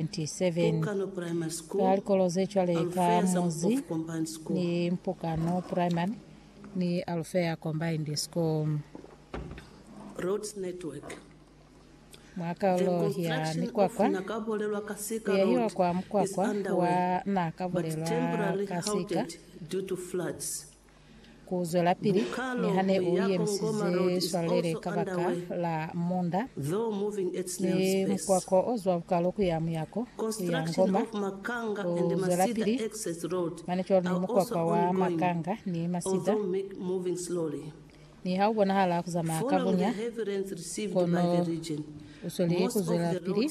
27 ka likolo ze cwale ka Mozi ni Mpukano Primary ni Alufea Combined School. Mwa kaulo ya mikwakwa kuyahiwa kwa mukwakwa wa na ka bulelwa ka sika Ku zwelapili niha ne u yemisize swalele kabaka la munda ni mukwako o zwa bukalo ku ya muyako, ku ya Ngoma, ku zwelapili mane cwalo ni mukwakwa wa Makanga ni Masida, niha u bonahala ku zamaya ka bunya, kono u sweli ku zwelapili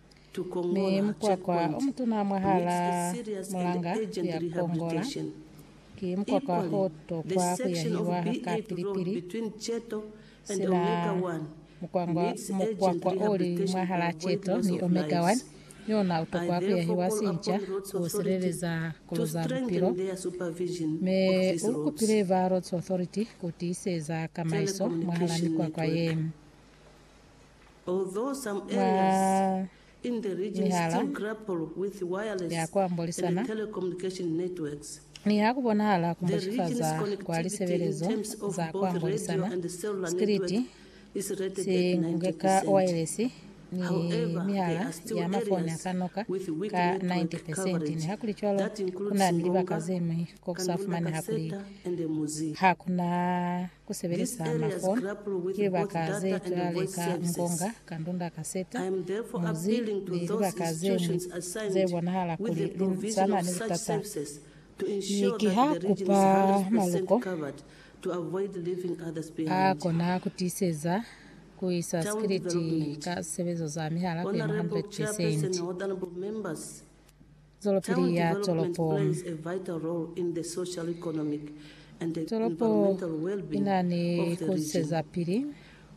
Mi mukwakwa omutuna mwahalaa mulanga ya Kongola ki mukwakwa o tokwa kuyahiwa ka pili-pili, sina mukwangwa, mukwakwa oli mwahalaa Ceto ni Omega One ni ona utokwa kuyahiwa sinca ku sileleza kolo za bupilo. Mi ulukupile ba Roads Authority kutiiseza kamaiso mwahalaa mikwakwa ye. Mwa mihala ya ku ambolisana, niha ku bonahala ku mbashifaza kwa lisebelezo za ku ambolisana, sikiliti si nge ka waelesi ni mihala ya mafoni a ka noka ka 90 pesenti. Nihakulicwalo, ku na ni libaka ze ñwi ko ku sa fumaneha kuli ha ku na Ku sebelisa mafoni ki libaka ze tulale ka ngonga ka ndunda kaseta, muzi, ni libaka ze ñwi ze bonahala kuli li sana ni litata. Mi ki ha kupa maluko a kona ku tiiseza ku isa sikiliti ka sisebezo za mihala ku yema 100 pesenti. zwelopili ya tolopo. Tolopo i na ni ku sizapili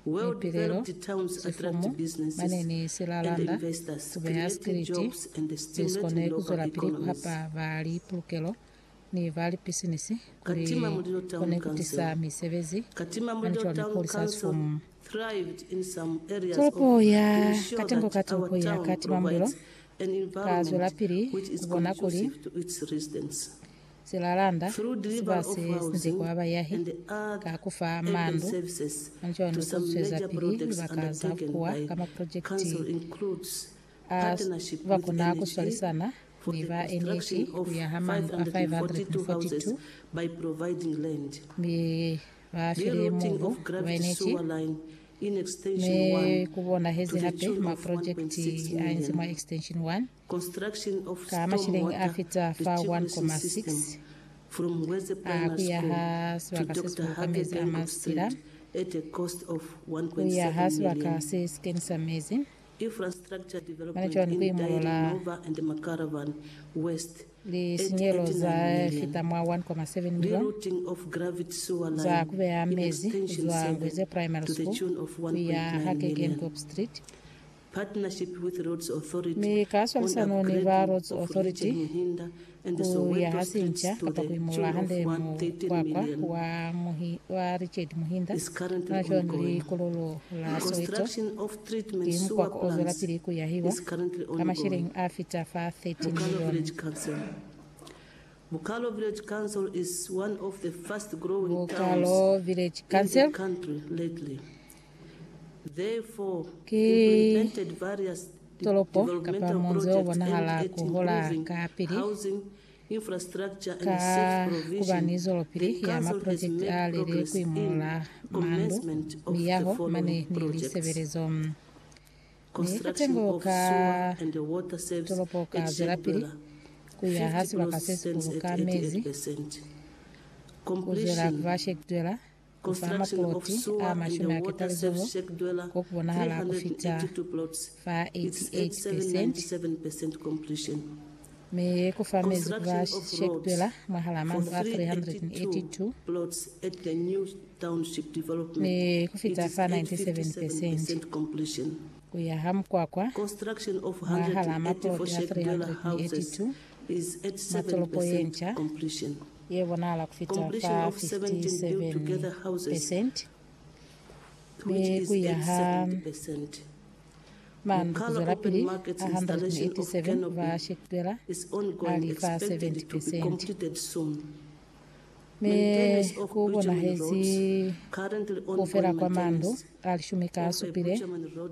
mipilelo, sifumu, mane ni silalanda, ku beha sikiliti, ze si kone ku zwelapili ku hapa baali pulukelo ni ba lipisinisi kuli kone ku tisa misebezi hanco ni ku hulisa sifumu. Tolopo ya Katengo ka Tolopo ya Katimamulilo ka zwelapili ku bona kuli silalanda si ba si sinzi kwa bayahi ka ku fa mandu hanco ni ku zwezapili libaka za bukuwa ka maprojekiti A ba kona ku swalisana ni ba NAT ku ya ha mandu a 542 mi ba file mubu ku ba NAT, mi ku bonahezi hape maprojekiti a inzi mwa Extension 1 ka mashilingi a fita fa 1.6 a ku yaha sibaka se si buluka mezi a masitila ku yaha sibaka se si kenisa mezi. Mane cwani ku imolola lisinyelo za fita mwa 1.7 milioni za ku beya mezi kuzwa Ngweze Primary School kuya ha Keukenhoop Street, mi ka swalisano ni ba Roads Authority? Ku yaha sinca kapa ku imolola hande mukwakwa wa muhi, wa Richard Muhinda nwa cwani likololo la Soweto? Ki mukwakwa o zwelapili ku yahiwa ka masheleñi a fita fa 13 milioni. Bukalo Village Council is one of the fast growing towns in the country lately. Ki tolopo kapa munzi o bonahala ku hola ka pili ka ku ba ni zwelopili ya maprojekiti a li li ku imolola mandu, miyaho mane ni lisebelezo. Mi katengo ka tolopo ka zwelapili ku ya ha sibaka se sikulu ka mezi ku zwela ku ba shektwela ku fa maploti a mashumi a ketalizulu ko ku bonahala ku fita fa 88 peresenti, mi ku fa mezi ku ba shekitwela mwahal'a mandu a 382, mi ku fita fa 97 peresenti ku yaha mukwakwa mwahal'a maploti a 382 mwa tolopo ye nca. ye bonahala ku fita fa 57% mi ku ya ha mandu ku zwelapili ha 187 ba shekitwela a li fa 70%, mi ku bonahezi ku fela kwa mandu a lishumi ka supile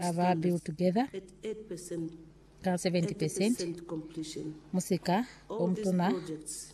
a ba built together ka 70%, musika o mutuna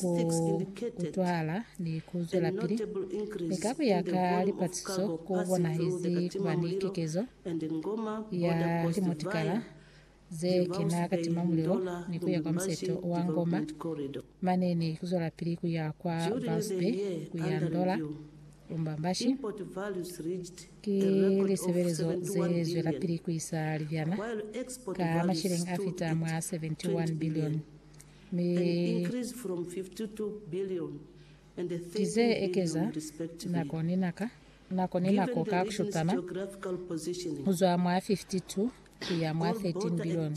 ku utwala ni ku zwelapili mi ka ku ya ka lipatiso ku bonahezi ku ba ni kekezo ya limotikara ze kena ka timamulilo ni ku ya kwa museto wa Ngoma mane ni ku zwelapili ku ya kwa Vouse Bay ku ya Ndola Lumbambashi. Ki lisebelezo ze zwelapili ku isa libyana ka masheleng a fita mwa 71 bilioni. Ki ze ekeza nako ni naka, nako ni nako ka ku shutana, ku zwa mwa 52 ku ya mwa 13 bilioni.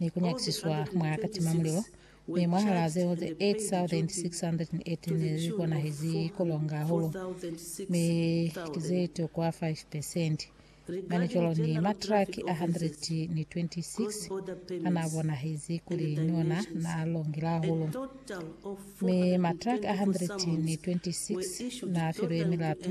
ni ku nyakisiswa mwa katimamulilo, mi mwahalaa zeo ze 8,618 li konahezi ku longa hahulu, mi ki ze tokwa 5 pesenti. Mane cwalo ni matraki a 126 a naa bonahezi kuli ni ona naa longile hahulu, mi matraki a 126 naa filwe milatu,